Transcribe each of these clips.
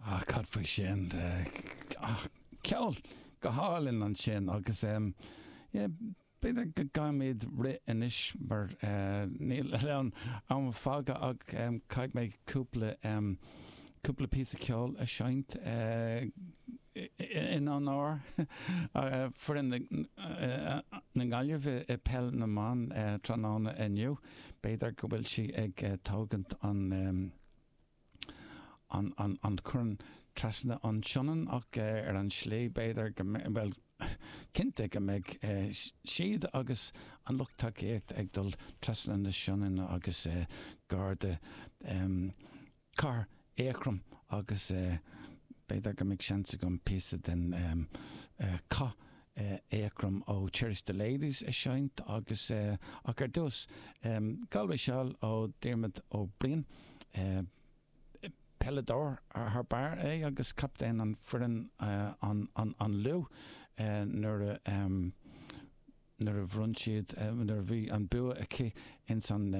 Ah, cad faoi sin? Ah, ceol go hálainn ansin agus em, yeah, b'fhéidir go gcaithfimid rith anois mar eh, níl a lán am fágtha ach em, caithfidh mé cúpla em, cúpla píosa ceol a seinnt eh, in onóir eh, foireann na eh, eh, na nGaillimhe i i peil na mban eh, tráthnóna inniu. B'fhéidir go bhfuil sí ag eh, tógaint an em, an corn trasna an tSionainn ach ar an tslí b'fhéidir go mbeidh, bhuel cinnte go mbeidh siad agus an lucht tacaíochta ag dul trasna na Sionainne agus gar do Chathair Eachroim agus b'fhéidir go mbeidh seans agam píosa den chath Eachroim ó Cherish the Ladies a seinnt agus ach ar dtús, Galway Shawl ó Diarmaid Ó Briain. Peileadóir thar barr é agus captaen an foireann an Lú nuair nuair a bhronn siad nuair a bhí an bua aici ins an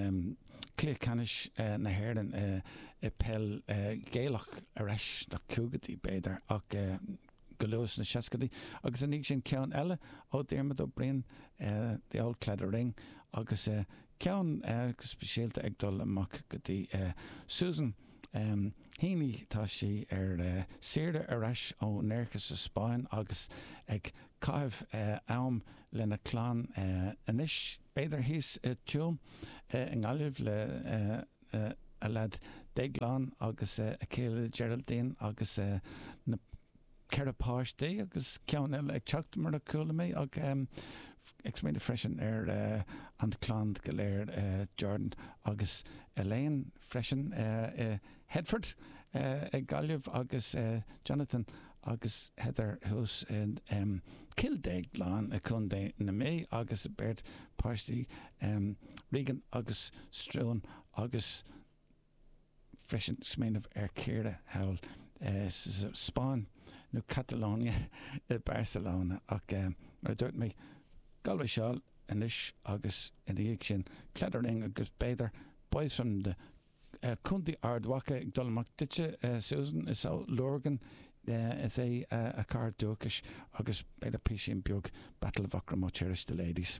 Cluiche Ceannais na hÉireann i peil Ghaelach ar ais sna caogaidí b'fhéidir ach go luath sna seascaidí, agus ina dhiaidh sin ceann eile ó Dhiarmaid Ó Briain, The Old Claddagh Ring, agus ceann go speisialta ag dul amach go dtí Susan Heaney, tá sí ar saoire ar ais ó Nerja sa Spáinn agus ag caitheamh am lena clann anois, b'fhéidir thíos i dTuaim i nGaillimh le a a leaid Déaglán agus a chéile Geraldine agus na ceithre páistí agus ceann eile ag teacht mar a chuala mé ach ag smaoineamh freisin ar an chlann go léir Jordan agus Elaine freisin i Headford i Gaillimh agus Jonathan agus Heather thuas in Cill Déagláin i Co. na Mí agus a beirt páistí Regan agus Struan agus freisin smaoineamh ar Chiara thall sa Spáinn nó Catalonia i Barcelona ach mar a dúirt mé Galway Shawl anois agus ina dhiaidh sin Claddagh Ring agus b'fhéidir Boys from the Contae Ard Mhacha ag dul amach duitse, Susan, is ó Lurgan is é a cathair dúchais, agus b'fhéidir písín beag Battle of Aughrim ó Cherish the Ladies.